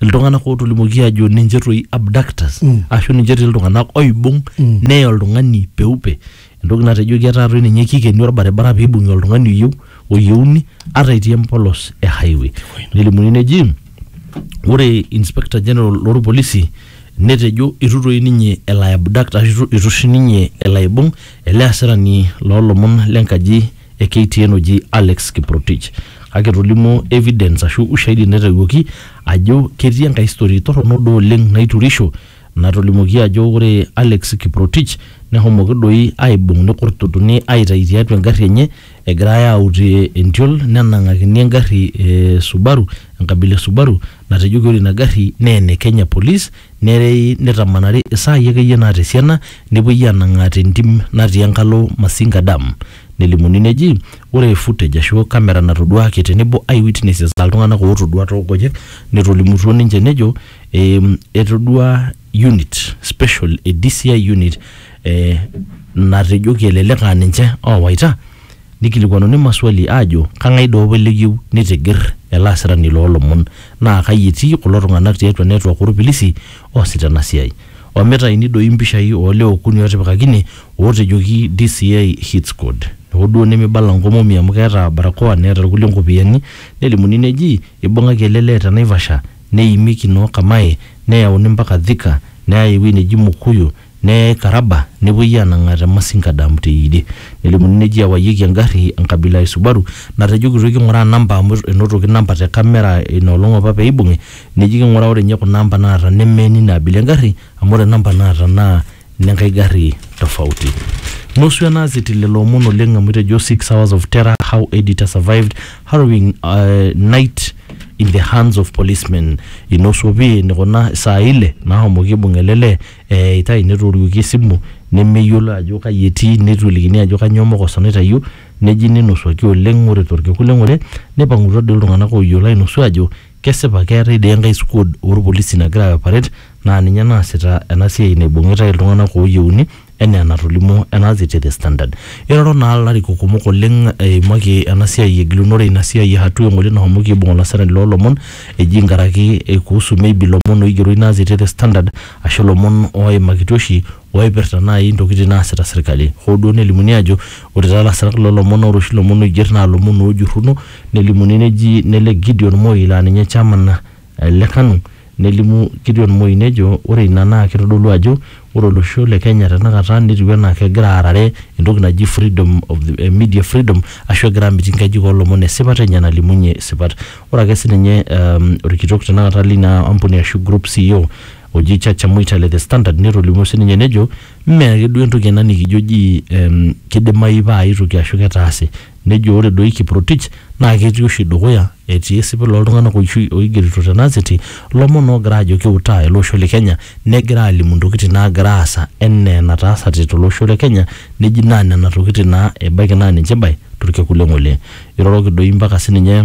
iltung'anak ootolimuoki aajo ninche toi abductors Mm. ashu ninche etii iltung'anak oibung Mm. neya oltung'ani peupe entoki natejoki etaa toi ninye kikeni orbaribara piibung'i oltung'ani oyieu oyieuni ata etii empolos e highway nelimuni neji ore inspector general lorpolisi netejo itu toi ninye elo ai abduct ashu itu- itu oshi ninye elo aibung ele asirani loolomon lenkaji e KTN oji Alex Kiprotich kake etolimuo evidence ashu ushahidi naitawuoki ajo ketii enkae story torrono duo oleng naiturisho natolimuoki ajo ore Alex Kiprotich nehomoki doi aibung nikurtutuni aitayu tiatua engarri enye egirae aut eh, entiol nenang'akini engarri e Subaru enkabila e Subaru natejoki ore ina garri naa ene Kenya Police Nerei neitamanari isaai akeyie naata esiana nepuoi aanang'aa te ntim natii enkalo Masinga Dam. Nelimuni neji ore footage ashu kamera natoduaaki tenebo eye witnesses aa iltung'anak ootodua too nkonyek netolimutuo ninche nejo etodua unit special e DCI unit natejoki elelek aa ninche oowaita Neikilikuanuni maswali aajo kang'ae doi opa likiyieu neitigir ele asirani loo lomon naa kai etii kulo tung'anak tiatua network oo lpilisi oosita ena siai. Omitaini doi impishai oo lewa okuni ootipikaki ine ootejoki DCI hit squad. Hoo duo nemeibala nkomomi amu keeta barakoa neeta ilkulie nkopiyiani nelimuni neji eibung'aki ele lee te Naivasha neimieki noo Kamae neyauni mpaka Thika neyai ewueji neji Mukuyu Neikarraba nepuoi aanang'aa te Masinga Dam te Yieyie. Nelimuni neji ewayieki engarri enkabila e Subaru natejokitoi king'uraa namba amu enotoki namba te kamera ina olong apa pee eibung'i neji king'uraa ore ninye kuna amba naata neme nina abila engarri amu ore namba naata naa nenkae garri tofauti. Nusu enaas etii lelo omon oleng amu etejo six hours of terror, how editor survived harrowing night in the hands of policemen. Inosu opi eneikuna isaai ile naahomoki aibung ele lee Eitae netooriwuoki esimu nemeyiolo ajo kaji etii neitu elikini ajo kanyoo mokoso naitayio neji neinosuaki oleng ore torkekun le ng'ole neipang'utua doi iltung'anak ooyiolo ainosu aajo kesipa keetae doi enkae squad oo lpolisi nagira aioperate naa ninye naasita ena siai naibung'itae iltung'anak ooyieuni enaa enatolimuo ena te The Standard. Eiroro naa ilarikok kumok oleng eimaki ena siai egilunore ina siai e Hatua eng'ole nashomoki aibung olasirani loo lomon Eji nkaraki eikuhusu maybe ilomon oigero ina azeti e The Standard ashu ilomon ooimakitia oshi ooipirta naai intokitin naasita serkali. Hoo duo nelimuni aajo ore taa lasirak loo lomon naa ore oshi ilomon oiger naa ilomon oojurruno nelimuni neji nelej Gideon Moi laa ninye chairman le Kanu nelimu Gideon Moi nejo ore ina naa kitodolu ajo ore olosho le Kenya tenakata netiu enaa kegira aarare entoki naji freedom of the media freedom ashu egira amitiki nkajijik oo lomon esipata enye nalimunye sipat. Ore ake sininye um, orkitok tenakata lina ampuni ashu group CEO oji Chacha Mwita le The Standard netolimuo sininye nejo mme ake duo entoki ena nikijo ji um, kidimayu paa ai toki ashu ketaase. Nejo ore doi Kiprotich naa ketii oshi dukuya etii esipil ooltung'anak oshi oigerito tena azeti lomon oogira aajo kiutaa ele osho le Kenya negira aalimu ntokitin naagira aasa enaa enataasate tolosho le Kenya neji naa nena tokitin naa ebaiki naa ninche ibae torkekun le ng'ole. Iroroki doi mpaka sininye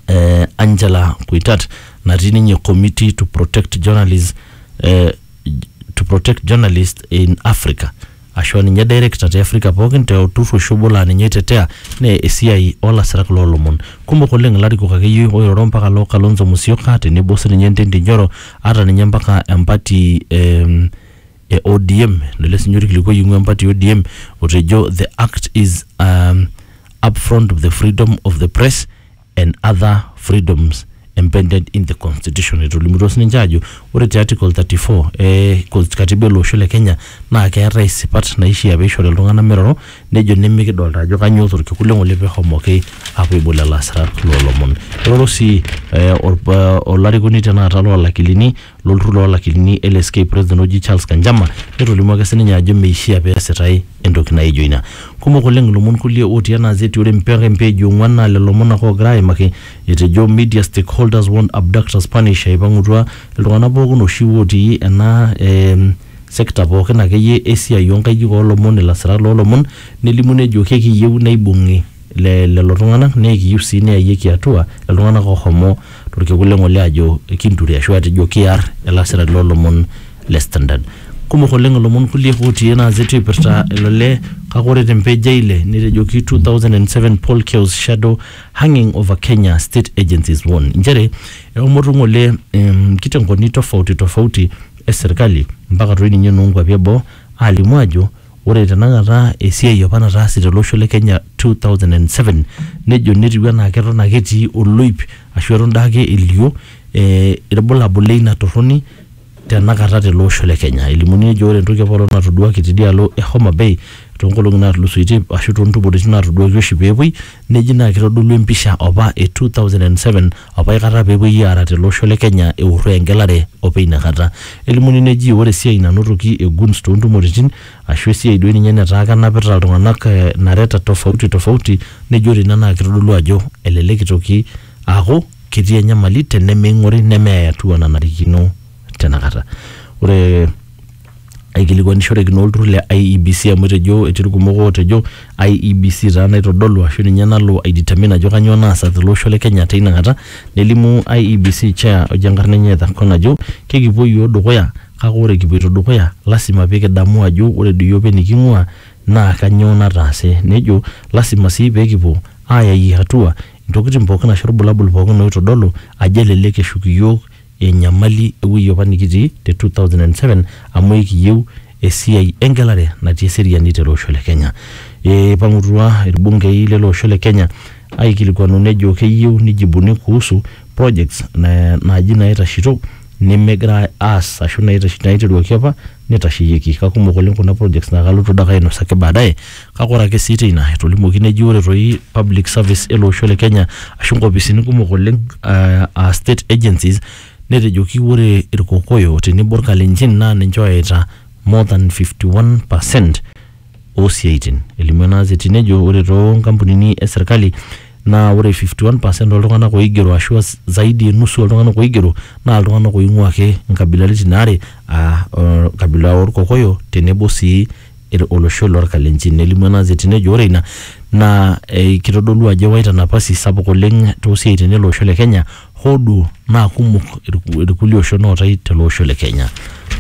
eh, Angela Kuitat natii ninye committee to protect journalists eh, to protect journalists in Africa ashua ninye director te Africa pookin te olturrur oshi obo laa ninye oitetea nee esiai olasirak loolomon kumok oleng ilarikok akeyie oiroro mpaka loo Kalonzo Musyoka tenebo sininye Ndindi Nyoro ata ninye mpaka empati eh, e ODM lele sinye orkilikuai oing'ua empati e ODM otejo the act is um, upfront of the freedom of the press and other freedoms embedded in the constitution etolimutuo sininche aajo ore te article 34 eh, kos- katiba ele osho le Kenya naa keetae isipat naishia peishori iltung'anak miroro nejo nemikidolta ajo kanyoo torkekun le ng'ole pehomoki apuo aibol lelo asirak loolomon eoro sii eh, orp- eh, olarikoni tenakata loolakilini lolturur loo lakilini LSK president oji Charles Kanjama netolimuo ake sininye ajo meishia pee esitae entoki naijo ina. Kumok oleng ilomon kulie otii ena azeti ore mpaka empeeji e ong'uan naa lelo omon ake oogira aimaki etejo media stakeholders warn abductors punish eipang'utua iltung'anak pookin oshi otii ena eh, sector pookin akeyie esiai oo nkajijik oo lomon ilasirak loo lomon nelimu nejo kekiyieu neibung'i le lelo tung'anak naa ekiyieu sii neyayieki atua iltung'anak oohomo torkekun le ng'ole aajo kinture ashu aatejo kiar ilasirani loo lomon le Standard. Kumok oleng ilomon kulie ootii ena gazeti oipirta ilo lee kake ore te mpage e ile netejoki 2007 poll kills shadow hanging over Kenya state agencies warn inchere eomoto ng'ole nkitengoni tofauti tofauti e serkali mpaka toi ninye inoo nkuapi e boo aalimu aajo Ore tenakata esiai apa nataase tele osho le Kenya 2007 nejo netiu anaa keton ake etii oloip ashu eton daake elio eh ilbulabul leina torroni tenakata tele osho le Kenya. Elimuni nejo ore entoki apaelong natoduaki tidialo e Homabay toonkolong'i natulusoitie ashu toontumoritin natoduaki oshi peepuoi Neji naa kitodolu empisha opa e 2007 opa aikata pee epuoi aara tele osho le Kenya eurro engelare opa ina kata. Elimuni neji ore esiai nanotoki e guns too ntumoritin ashu esiai doi ninye netaa kenapita iltung'ana nareta tofauti tofauti neji ore ina naa kitodolu ajo elelek itoki aaku ketii enyamali tenemeing'ori nemeyai atua nanarikino tena kata. Ore aikilikuanishoreki naa olturrur le IEBC amu etejo etii irkumok ootejo IEBC taa naitodolu ashu ninye nalo aidetermine ajo kanyioo naasa tele osho le Kenya teina kata nelimu IEBC chair ojo enkarna enye Ethur Kong ajo kekipuo iyiook dukuya kake ore kipuoito dukuya lazima pee kidamu ajo ore doi iyiook eniking'uaa naa kanyioo nataase nejo lazima sii pee kipuo aayayie atua intokitin pookin ashu irbulabul pookin oitodolu ajo elelek eshuk iyiook enyamali ewuei apa nikitii te 2007 amu ekiyieu esiai engelare natii eseriani tele osho le Kenya. Eipang'utua ilbungei lele osho le Kenya aikilikuanu nejo keyieu nijibuni kuhusu projects naaji naitashito nemegira aas ashu naiteruaki apa neitasheyieki. Kakumok oleng kuna projects naa kalotu dake ainosaki baadaye kake ore ake sii teina etolimuoki neji ore toi public service ele osho le Kenya ashu nkopisini kumok oleng aa state agencies netejoki ore Irkokoyo tenebo Irkalenjin naa ninche ooyaita more than fifty one percent oosiaitin. Elimu ena azeti nejo ore too nkampunini e serkali naa ore 51% ooltung'anak oigero ashu zaidi e nusu ooltung'anak oigero naa iltung'anak oing'ua ake nkabilaritin are aa enkabila oorkokoyo tenebo sii olosho lorkalenjin. Nelimu ena azeti nejo ore ina naa kitodolu ajo ewaita napasi sapuk oleng too siaitin ele osho le Kenya Hoo duo naa kumok irku- irkulie oshon ootae tele osho le Kenya.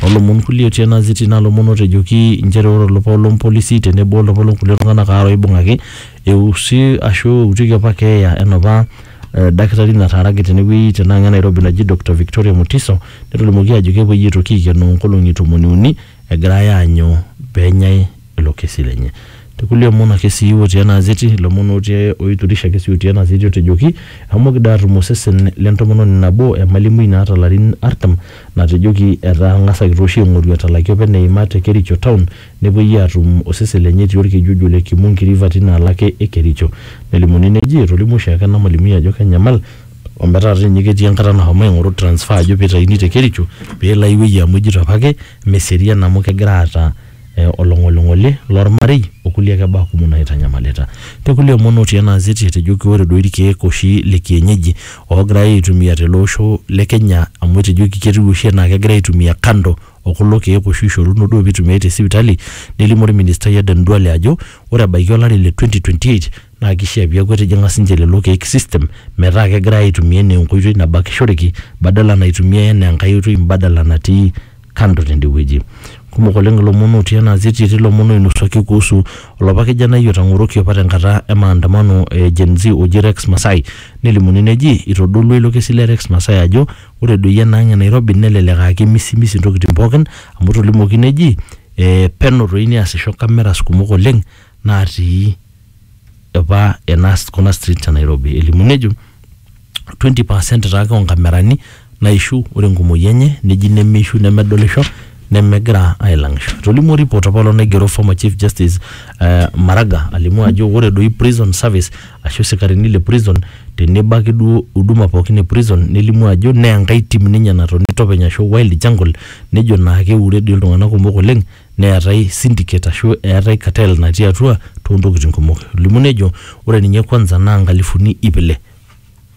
Too lomon kulie otii ena ziti naa lomon ootejoki inchere ore olapa obo lompolisi tenebo olapa loonkulie tung'anak aare oibung'aki eusi ashu eutieki opa keeya enopa eh, dakitari nataaraki tenewueji tenaang' e Nairobi naji Doctor Victoria Mutiso netolimuoki aajo kepuoi aitoki aikenoo nkolong'i tomoni uni egirai aanyu pee enyai ilo kesi lenye. Te kulie omon ake sii otii ena azeti, ilomon otii oiturisha ake sii otii ena azeti otejoki, eshomoki doi aatum osesen le ntomononi nabo emalimui naata larin artam natejoki etang'asaki tooshi aing'oru etalaki opa eneima te Kericho town nepuoi aatum osesen lenye etii olkeju ojo ole Kimungi river tina alaka e Kericho. Nelimuni neji etolimuo oshiake ena malimui ajo kenyamal ometaa dii ninye ketii enkata nashomo aing'oru transfer ajo peitaini te Kericho peelo ai wueji amu ejito apake meserian amu kegira aata eh, olong'oling'oli lormarei okulie ake baa kumok naitanyamalita. Te kulie omon otii ena azeti etejoki ore doi irkeek oshi le kienyeji ogirai aitumia tele osho le Kenya amu etejoki ketiu oshi enaa kegirai aitumia kando o kulo keek oshi oishoruno duo pitumiai te sipitali, nelimu orministai Aden Duale ajo ore ebaiki olari le 2028 naa keishaa pee eaku etijing'a sii ninche lelo keek system metaa kegirai aitumia anaa enkoitoi nabakishoreki badala naitumiai anaa enkae oitoi mbadala natii kando tende wueji. Kumok oleng ilomon otii ena gazeti, etii ilomon oinosuaki kuhusu olapa kijanai otang'oroki opa tenkata e maandamano e Gen Z oji Rex Masai. Nelimuni neji eitodolua ilo kesi le Rex Masai ajo ore doi ena ang e Nairobi nelelek aa kemisimisi ntokitin pookin amu etolimuoki neji peno doi neasisho cameras kumok oleng natii apa ena kuna streets e Nairobi elimu nejo 20% taake oo nkamerani naishu ore enkumoi enye neji nemeishu nemedolisho nemegira ailang'isho. Etolimuo report apa olong' naigero former chief justice eh Maraga alimu ajo ore doi prison service ashu isikarini le prison tenebo ake duo huduma pookin e prison nelimu ajo nee enkae tim ninye natoni topeny ashu wild jungle nejo naa keure dii iltung'anak kumok oleng'. neetae syndicate ashu eetae cartel natii atua toontokitin kumok. Elimu nejo ore ninye kwanza naa nkalifuni iip ile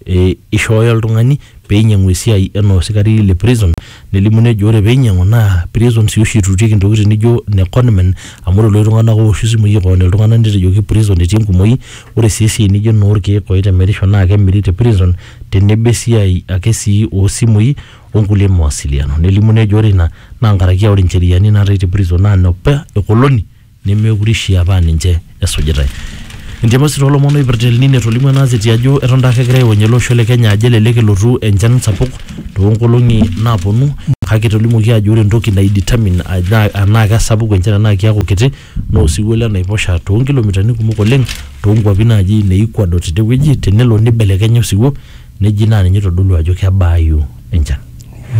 e eishooyo oltung'ani pee einyiang'u esiai enaa osikari le prison. Nelimu nejo ore pee einyiang'u naa prison sii oshi eituitieki intokitin naijo ine conmen amu ore iloshi tung'anak ooshu isimui airony iltung'anak netejoki prison etii enkumoi. Ore sii esiai naijo enoorkiek oitemerisho naa kemiri te prison tenebo esiai ake sii oo simui o nkulie mawasiliano. Nelimu nejo ore ina naa nkaraki aa ore ncheriani naatae te prison naa nopa e koloni nemeekure eishia paa ninche esujitai. Entemore sii too lomon oipirta El Nino etolimuo ena aseti ajo eton taake egirai aonie ele osho le Kenya ajo elelek elotu enchan sapuk too nkolong'i naaponu kake etolimuoki aajo ore entoki nai determine enaa kesapuku enchan enaa keeku kiti naa osiwuo le naiposha too nkilomitani kumok oleng too nkuapi naaji ne Ecuador tidie wueji tenelo nibelekenya osiwuo neji naa ninye oitodolu ajo kebaayu enchan.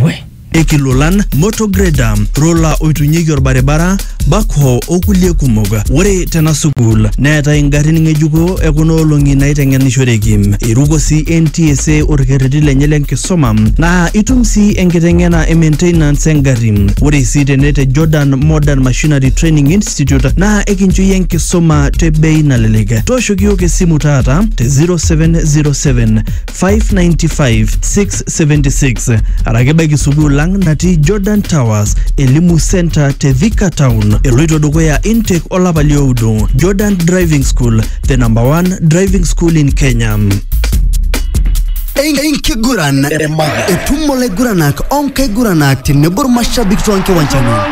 We. Ikilolan, motor grader, rola oitunyieki olbaribara, backhoe o kulie kumok. Ore tena sukuul neetae ingarrin ng'ejuko e kuna olong'i naaiteng'enishoreki. Eiruko sii NTSA olkerreti lenye le nkisuma naa itum sii enkiteng'ena e maintenance e ngarri. Ore sii tene te Jordan Modern Machinery Missionary Training Institute naa ekincho iyie enkisuma te bei nalelek. Tooshoki iyiook esimu taata te 0707 595 676 araki baiki sukuul lang natii Jordan Towers Elimu Center te Thika Town. Eloito dukuya intake olapa lioudo. Jordan Driving School, the number one driving school in Kenya. enkiguran etumo laiguranak onkaiguranak tenebo irmashabik toonkiwanjani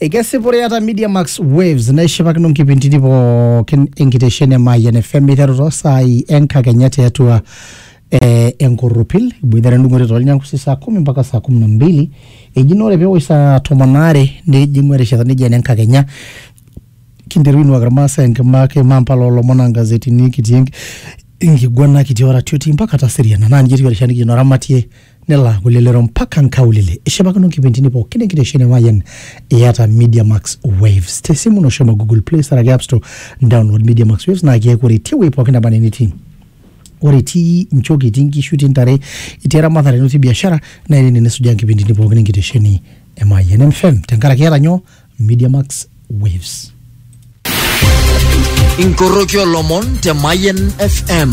Ekesipore eata Media Max Waves naishipakino nkipintini pookin enkitesheni e Mayian FM eiteru too saai enkakenya tiatua eh, enkorropil iboitare endung'oto toolnyangusi saa kumi mpaka saa kumi na mbili eji naa ore peewosh saa tomon aare nejing'u erishata neji ene nkakenya kinteru ainuaki irmaasai enkima kimaa mpala oolomon angazetini kitii enk- enkiguana kitii oratioti mpaka taserian naa ninye etiu erishata nikijo noramatie nelaaku lelero mpaka nkaulele ishipakino nkipindini pookin enkitesheni Mayian iyata Media Max Waves te simu ino shomo Google Play Store ake App Store download Media Max Waves naa keeku ore tewuei pookin naba enaa enitii ore itii nchoki itii nkishu itii ntare itii eramatare ino itii biashara naa ene nisujaa nkipindini pookin enkitesheni e Mayian FM tenkaraki iyata nyoo Media Max Waves Inkoroki olomon te Mayen FM.